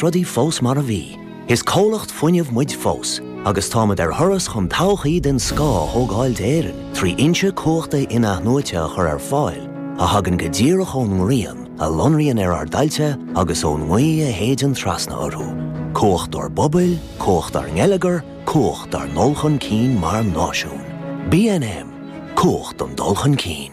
rudaí fós mar a bhí. Is comhlacht fuinnimh muid fós agus táimid ar thuras chun todhchaí den scoth a thógáil d'Éirinn trí fhoinse cumhachta in-athnuaite a chur ar fáil a thagann go díreach ón ngrian a lonraíonn ar ár dtailte agus ón ngaoth a shéideann trasna orthu. Cumhacht dár bpobail, cumhacht dár ngeilleagar, cumhacht dár ndul chun cinn mar náisiún. BNM, Cumhacht don dul chun cinn.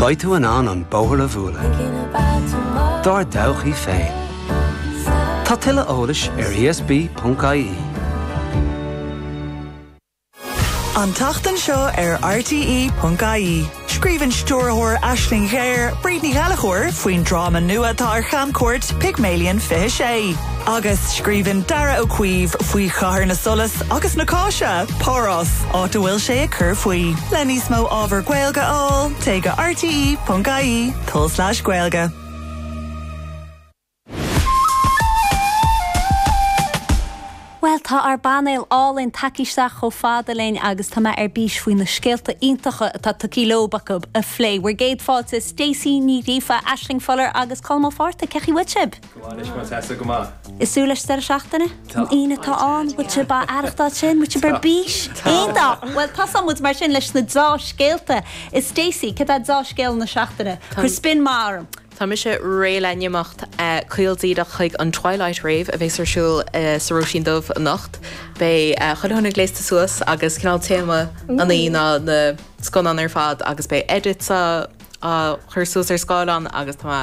Beidh tú in ann an bóthar a bhualadh i do thodhchaí féin. Tá tuilleadh eolais ar ESB.ie. An tseachtain seo ar RTÉ.ie, scríobhann stiúrthóir Aisling Ghéar, Bríd Ní Ghallachóir, faoin dráma nua atá ar chamchuairt, Pygmalion 26. Agus scríobhann Darragh Ó Caoimh faoi chathair na solas agus na cáise, Párás, áit a bhfuil sé ag cur faoi. Le níos mó ábhar Gaeilge a fháil, téigh go rte.ie, tulslais gaeilge. Bhuel, tá ár bpainéal álainn tagtha isteach chomh fada linn agus tá mé ar bís faoi na scéalta iontacha atá tugtha leo acu a phlé. Bhur gcéad fáilte, Stacey Ní Ghríofa, Aisling Fuller agus Colm Ó Fátharta. Cé chaoi bhfuil sibh? Ag tnúth leis an deireadh seachtaine? An Aoine atá ann, bhfuil sibh á aireachtáil sin, bhfuil sibh ar bís? Aon dath? Bhuel, tosaíonn muid mar sin leis na dea-scéalta a Stacey, céard é dea-scéal na seachtaine? Cuir spin maith orm! Tá mise réidh le n-imeacht caol díreach chuig an Twilight Rave a bheas ar siúl sa Róisín Dubh anocht. Beidh chuile dhuine gléasta suas agus cineál téama na hoíche ná na scannáin ar fad agus beidh edits á chur suas ar scáileán agus tá mé.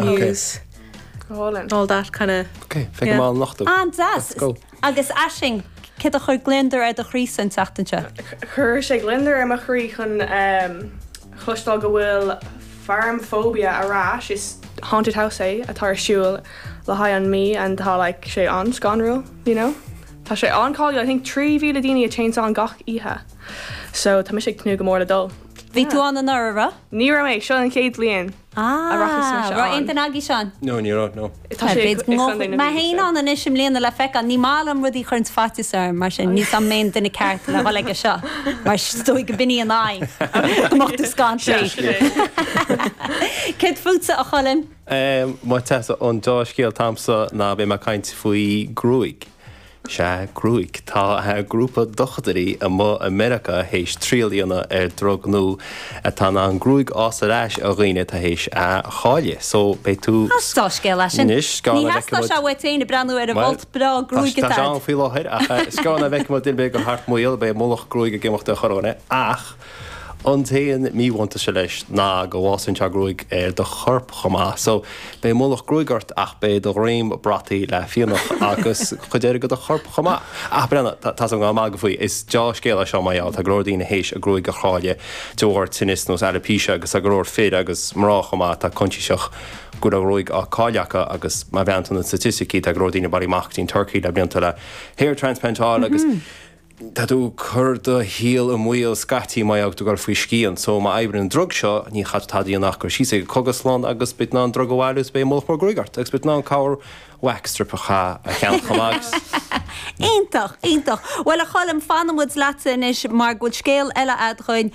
News. All that kind of. Ok, fé go mall nochtú. An deas! Agus Aisling, céard a chuir gliondar ar do chroí san tseachtain seo? Chuir sé gliondar ar mo chroí chun chloisteáil go bhfuil Farm Phobia ar ais, is haunted house é atá ar siúl le haghaidh an mí and tá like sé an-scanrúil, you know? Tá sé an-cáiliúil, I think trí mhíle daoine a téanns ann gach oíche, so tá mise ag tnúth go mór le dul. Bhí tú ann anuraidh, an raibh? Ní raibh mé, seo an chéad bhliain. a rachaidh sé Ah! seo Raibh aon ann? duine agaibh ann? No, ní raibh, no. Tá sé ag B'fhéidir go fheiceáil mé mbeidh féin anois. ann anois i mbliana le feiceáil. Ní maith liom rudaí a chuireanns faitíos orm, mar sin níl a fhios agam an mé an duine ceart le dhul chuige seo, mar is dóigh go b'in í an aidhm, go mbeadh tú scanraithe. Dea-scéal. Céard fútsa, a Choilm? Muise an dea-scéal atá agamsa ná beidh mé ag caint faoi gruaig. Sea, gruaig. Tá grúpa dochtúirí amuigh i Meiriceá théis triail a dhéanamh ar drug nua atá in ann gruaig a fhás ar ais do dhaoine atá théis í a chailleadh. So, beidh tú. Tá dea-scéal leis sin. Anois, scannáin Ní theastódh sé uait féin ag breathnú ar an Bhol. bholt breá gruaig Tá atá sé ann agat. faoi láthair, ach sula mbeidh muid ag dul mé gur thart maol, beidh mullach gruaig ag imeacht ar chorrdhuine, ach. An t-aon míbhuntaiste leis ná go bhfásann sé gruaig ar do chorp chomh maith, so beidh mullach gruaig ort ach beidh do dhroim brataithe le fionnadh agus chuid eile de do chorp chomh maith. Ah, Brenna, tá's agam go raibh mé ag magadh faoi, is dea-scéal é seo mar gheall, tá go leor daoine théis a gruaig a chailleadh de bharr tinnis nós alopecia agus tá go leor fir agus mná chomh maith atá coinsiasach go raibh a gruaig á cailleadh acu agus má bhreathnaíonn tú ar na staitisticí tá go leor daoine ag bailiú amach go dtí an Tuirc le blianta le hair transplant a fháil agus Tá tú ag cur do shaol i mbaol scaití má tá tú ag goil faoi scian. So, má oibríonn an drug seo, ní chaithfidh tú tada a dhéanamh ach goil síos ag an gcógaslann agus beidh tú in ann an drug a bhailiú is beidh mullach mór gruaige ort agus beidh tú in ann corr wax strip a cheannacht chomh maith. Iontach, iontach. Bhuel, a Choilm, fanann muid leatsa anois mar go bhfuil scéal eile agat dhuinn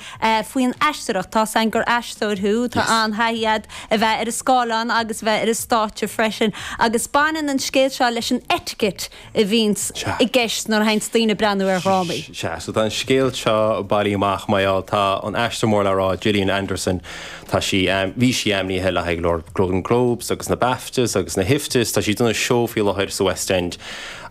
faoin aisteoireacht. Tá's againn gur aisteoir thú, tá an-thaithí agat a bheith ar an scáileán agus a bheith ar an stáitse freisin agus baineann an scéal seo leis an etiquette a bhíonns Sea. i gceist nuair a thaganns daoine ag breathnú ar dhrámaí. Sea, so tá an scéal seo bailithe amach, mar gheall, tá an aisteoir mór le rá, Gillian Anderson, tá sí, em, bhí sí ainmnithe le haghaidh go leor Golden Globes agus na BAFTAs agus na hIFTAs, tá sí ag déanamh seó faoi láthair sa West End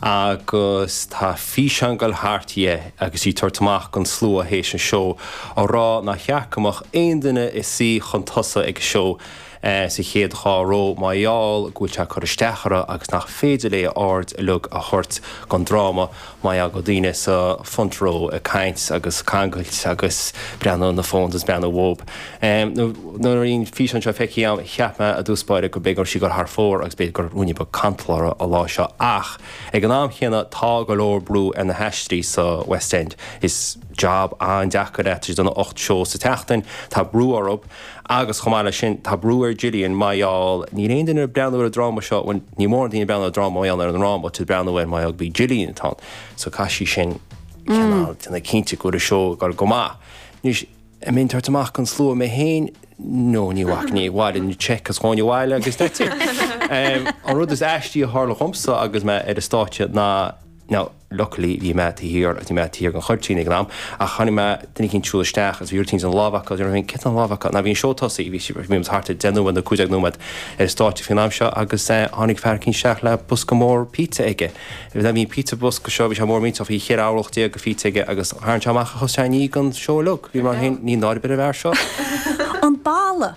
agus tá físeán ag goil thart dhi agus í ag tabhairt amach gon slua théis an seó, ag rá nár cheart go mbeadh aon duine ina suí chun tosaigh ag an seó. sa chéad dhá ró, mar gheall go bhfuil sé ag cur isteach uirthi agus nach féidir léi a haird uilig a thabhairt don dráma, mar gheall go bhfuil daoine sa front row ag caint agus ag cangailt agus breathnú ar na phones agus breathnú dhób. Nuair a bhí an físeán seo feicthe agam, cheap mé i dtús báire go mb'fhéidir go raibh sí ag goil thar fóir agus b'fhéidir go raibh ruainne beag cantal uirthi an lá seo, ach ag an am chéanna tá go leor brú ar na haisteoirí sa West End, is job an-deacair é, tá siad ag déanamh ocht seó sa tseachtain, tá brú orthu. Agus chomh maith leis sin, tá brú ar Gillian mar gheall, níl aon duine ag breathnú ar an dráma seo, bhuel, níl mórán daoine ag breathnú ar an dráma mar gheall ar an ndráma, tá siad ag breathnú air mar gheall gurb í Gillian atá ann, so caithfidh sí sin cineál déanamh cinnte go bhfuil an seó ag obair go maith. Anois, an mbeinn ag tabhairt amach don slua mé féin? No, ní bhacfainn, bhaileoinn an cheque is ghabhfainn abhaile agus that's it! An rud is aistí a tharla dhomsa agus mé ar an stáitse ná, now, luckily bhí mé taobh thiar agus bhí mé taobh thiar den chuirtín ag an am ach chonaic mé duine eicínt ag siúl isteach agus bhí rud eicínt ina lámh acu, déarfainn, cad tá ina lámh acu, now bhí an seó tosaithe, bhí siad, bhí muid thart ar deich nóiméad nó cúig déag nóiméad ar an stáitse faoin am seo agus tháinig fear eicínt isteach le bosca mór pizza aige, bhí an pizza bosca seo, bhí sé mór millteach, bhí cheithre orlach déag de phizza aige agus tharraing sé amach a chos sé i ndiaidh an seó uilig, bhí mé mar sin, níl náire ar bith ar an bhfear seo! An balla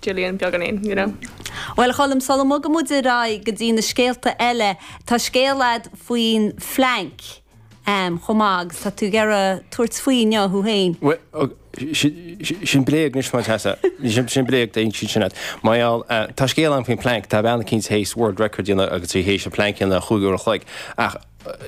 Gillian beagáinín, you know. Bhuel, a Choilm, sula mbogann muid ar aghaidh go dtí na scéalta eile, tá scéal agat faoin phlainc chomh maith agus tá tú ag iarraidh tabhairt faoi inniu thú féin. Bhuel, sin bréag anois, má tá. Sin bréag, dhein siad sin leat. Mar gheall, tá scéal agam faoin phlainc, tá bean eicínt théis world record a dhéanamh agus í théis an plainc a dhéanamh in chúig uair an chloig, ach,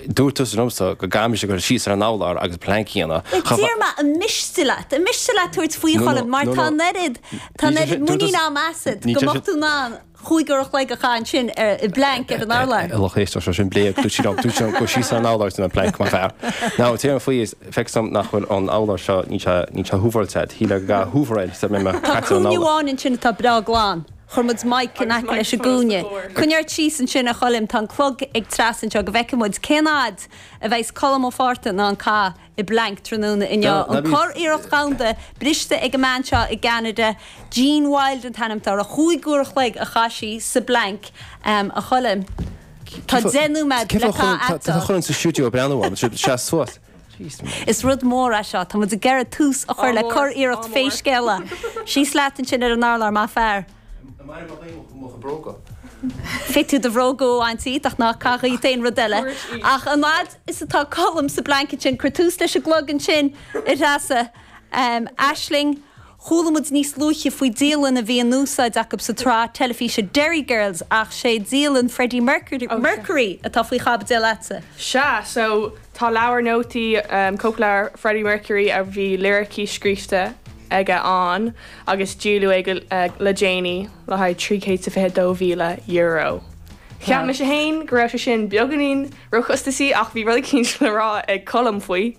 Dúirt tusa liomsa go gcaithfidh mise cur síos ar an abhlár agus pleanc a dhéanamh. Bhuel, deir mé an miste leat, an miste leat tabhairt faoi, a Choilm, mar tá an oiread, tá an oiread muinín a'm asat go mbeadh tú in ann cúig uair an chloig a chaitheamh ansin ar, i bpleainc ar an urlár. A lucht éisteachta, is é sin bréag, dúirt sí liom, dúirt sí liom cur síos ar an abhlár is ní ar an bpleainc. Maith fear. Now, tabhair faoi is feicimse nach bhfuil an t-urlár seo, níl sé, níl sé hooveráilte, shíl mé go gcaithfidh hoover air sula mbeidh mé caite ar an urlár. Tá cúinne amháin ansin atá breá glan. Chuir muid mic in aice leis an gcúinne. Coinnigh ort síos ansin, a Choilm, tá an clog ag Treasa anseo go bhfeicfidh muid cén fhad a bheidh's Colm Ó Fátharta in ann a chaitheamh i bPlank tráthnóna inniu. An churiarracht dhomhanda briste ag an mbean seo i gCeanada, DonnaJean Wilde an t-ainm atá uirthi. Chúig uair an chloig a chaith sí sa bPlank, a Choilm. Tá deich nóiméad le caitheamh agatsa. Tá Colm sa stiúideo ag breathnú orm. Sheas suas. Is rud mór é seo. Tá muid ag iarraidh tús a chur le curiarracht Fíor Scéal. Síos leat ansin ar an urlár, maith fear. An mbainfidh mé díom mo chuid bróga? Féadfaidh tú do bhróga a bhaint díot, ach ná caith dhíot aon rud eile. Ach an fhad is atá Colm sa bpleainc ansin, cuir tús leis an gclog ansin, a Threasa. Aisling. Chuala muid níos luaithe faoi dialann a bhí in úsáid acu sa tsraith teilifíse Derry Girls ach sé dialann Freddie Mercury, Mercury, atá faoi chaibidil leatsa. Sea, so tá leabhar nótaí, cóipleabhar Freddie Mercury a bhí liricí scríbhte aige ann agus díoladh é ag, le déanaí le haghaidh €322,000. Cheap mise fhéin go raibh sé sin beagáinín róchostasaí ach bhí rud eicínt le rá ag Colm faoi.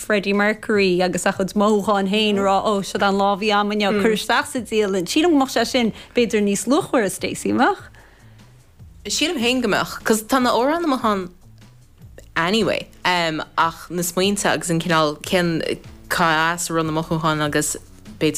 Freddie Mercury agus a chuid mothúchán féin a rá, oh, siod an lá a bhí a'm inniu, curtha isteach sa dialann. Sílim go mbeadh sé sin b'fhéidir níos luachmhaire, Stacey, an mbeadh? Sílim féin go mbeadh, 'cause tá na amhráin amuigh ann anyway, em, ach na smaointe agus an cineál, cén, cá as a raibh na mothúcháin agus b'fhéidir.